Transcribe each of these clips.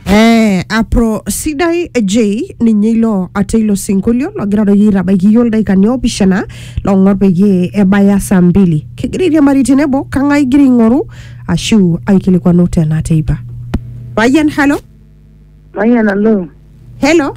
Eh, apro sidai j ninye ilo ate ilo sinkolio logira doi aitabaiki iyioo ildaikani oopishana long'or peyie ebaya saa mbili kigira airiamari tenebo kang'ae igira aing'oru ashu aikilikwanu tena teipa payian halo Mayian alo. helo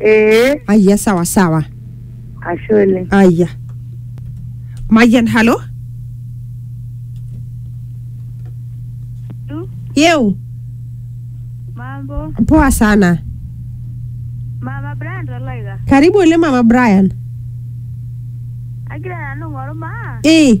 ee aya sawa sawa ashe oleng aya mayian halo yeu Mambo, poa sana mama Brand Oloika. karibu ole mama brian Agira nanu ng'oru maa ee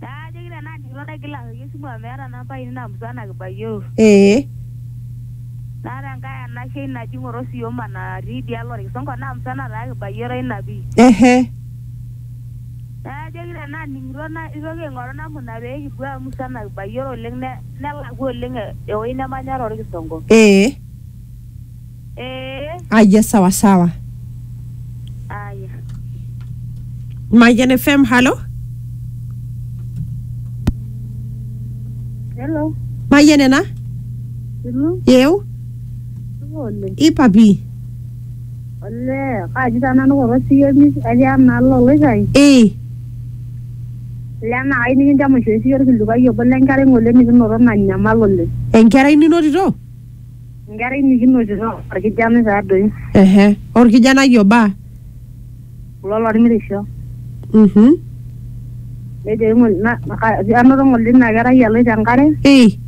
Naa ajoki tenaa ninye ilo daigila aoki esimu amu meeta namba ainei naa musana kibayioro. Ee. Naa tenkae anashe ai naji ng'oro sioma natii idialo olkisongo naa musana taa kibayioro ina pii. Ehe. Naa ajoki tenaa aning'ito naitoki aing'oru namna pee kipuo amu musana kibayioro oleng nelakua oleng ewueji nemanya tolkisongo. Ee. Eh, Aya, sawa sawa. aya. Mayan FM, halo. Hello. Mayan ena? Hello. Yeu? Ole. Ipapi? Ole. Kaji taa nanu kulo siyomi atii enaalo oloikai. Eh, Lena ai nikinchamaisho esiyo orkilikuai obo lenkerai ng'ole nikinoto nanyamal oleng. enkerai ninotito? Enkerai nikinotito orkijanai taadoi Ehe. Orkijanai oba. kulo lormirisho Mhm. nejo aing'ol- na- ka- anoto ng'ole ina kerai eloito enkare Ei.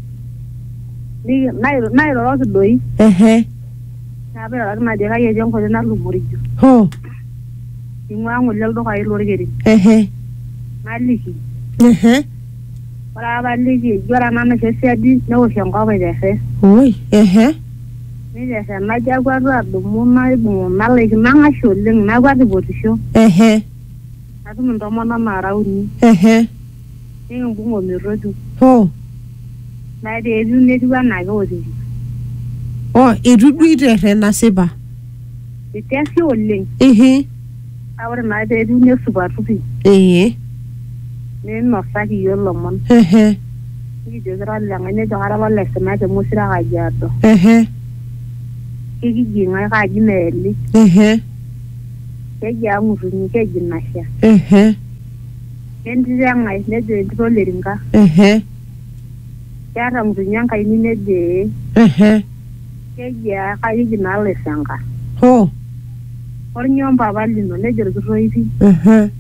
niki- nairo- nairoroki doi Ehe. naa pairoroki najo kai etii enkoitoi natupurrijo Ho. ing'ua ng'ole ildukai lorkerin Ehe. naliki Ehe. Ore apaliki eji ore ena naisho siadi neosh enkop aiperre. Oi, ehe. Neiperre najo akwatu adumu naibung nalaikino nang'ashe oleng nakwet aipotisho. Ehe. Natum intomonok naara uni. Ehe. Nikimbung ometutu. Hoo. Naa etiu anaa keotito. Oh, eitu duo eiterre nasipa. Eitiashe oleng. Ihi. Kake ore naa pee etiu nesupatu pii. Ee. Ninosaki iyiook ilomon. Ehe. Nikijoki ira ole ng'ae nejo kara apa ole Sina te Mosira Kajiado. Ehe. Kekiji ng'ae kaaji Meeli. Ehe. Keji aa Ng'utunyi keji Nasha. Ehe. Kentito e ng'ae nejo entito ole Rinka. Ehe. Keeta Ng'utunyi enkaini nejo ee. Ehe. Kejaa kaayeki naa laisenka. Hoo. Olnyo mpapa lino? Nejo lkitoipi. Ehe.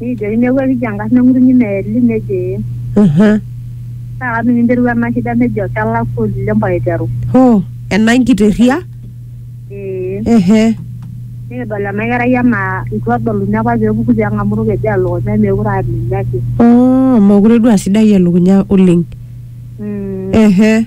Nikijoki neaku ekiji engarna e ng'utunyi meeli? Nejo ee. Ehe. Kaa kata ninye interua ena shida? Nejo kelakwa oleng mpaka eiteru. Hoo. Ena nkiteria? Ee. Ehe. Nikidol ena kerai anaa eitu edoluni apa pee epuku pee eng'amu olkeju aa lukunya meekure aa ninye ake. Oh, meekure duo aa sidai elukunya oleng. Ehe.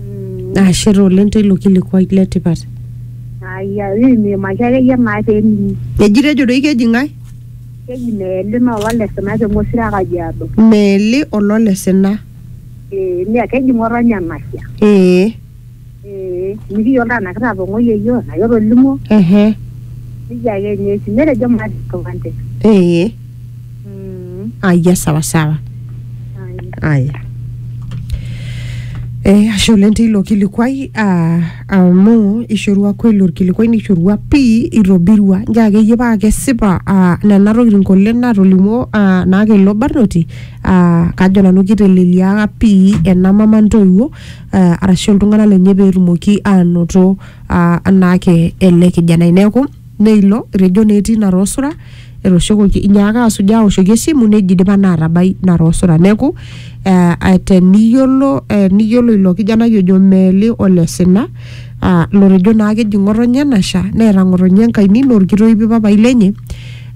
Mm, Ashe taa oleng teilo kilikuai le tipat. Aya, niimaki akeyie naa pening. Eji tejo doi keji ng'ae? Keji meeli naa olale sina te Ng'osiro e Kajiado. Meeli olole sina. Ee, nia keji ng'otonye enasia. Ee. Ee, mikiyiolo taa enaa kitapong'oyie yiok enaa ketolimuo. Ehe. Nijia ake ninye etiu. Netejo maata enkipande. Ee. Mm, Aya, sawa sawa. haya. Aya. Eh, ashe oleng teilo kilikuai ah, amu ishorua kweli orkilikuai nishorua pii itobirua njo akeyie paa kesipa ah, nena tokitin kole natolimuo ah, naa kelo barnoti ah, kajo nanu kiteleliaka pii ena mama ntoiwuo ah, arashu iltung'anak lenye peetumoki aanoto ah, anaake ele kijanai neeku neilo etejo naa etii ina roosura etooshokoki inyaaka asujaa aoshoki esimu neji idipa naa atabai ina roosura neeku eh, eh, teniyiolo eh, niyiolo ilo kijanai ojo meeli ole sina ah, lotejo naa keji ng'otonye nasha neeta ng'otonye enkaini naa orkitoipi papai lenye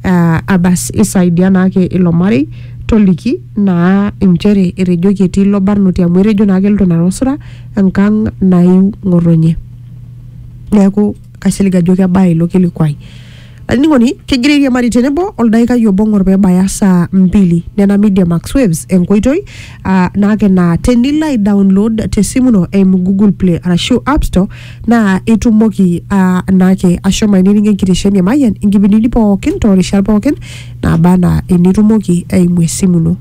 ah, abas isaidia naake ilo marei toliki naa inchere etejoki etii ilo barnoti amu etejo naa keloito ina roosura enkang naiu ng'otonye neeku kaisilig ajo kebaya ilo kilikuai olainining'oni kegira airiamari tenebo oldaikai obo ng'or pebaya saa mbili nena media max waves enkoitoi uh, naake naa tenilo ai download tesimu ino eimu google play arashu app store naa itumoki uh, naake ashomo ainining'ie enkitesheni emayian inkipindini pookin toorishat pookin naba anaa enitumoki eimu esimu ino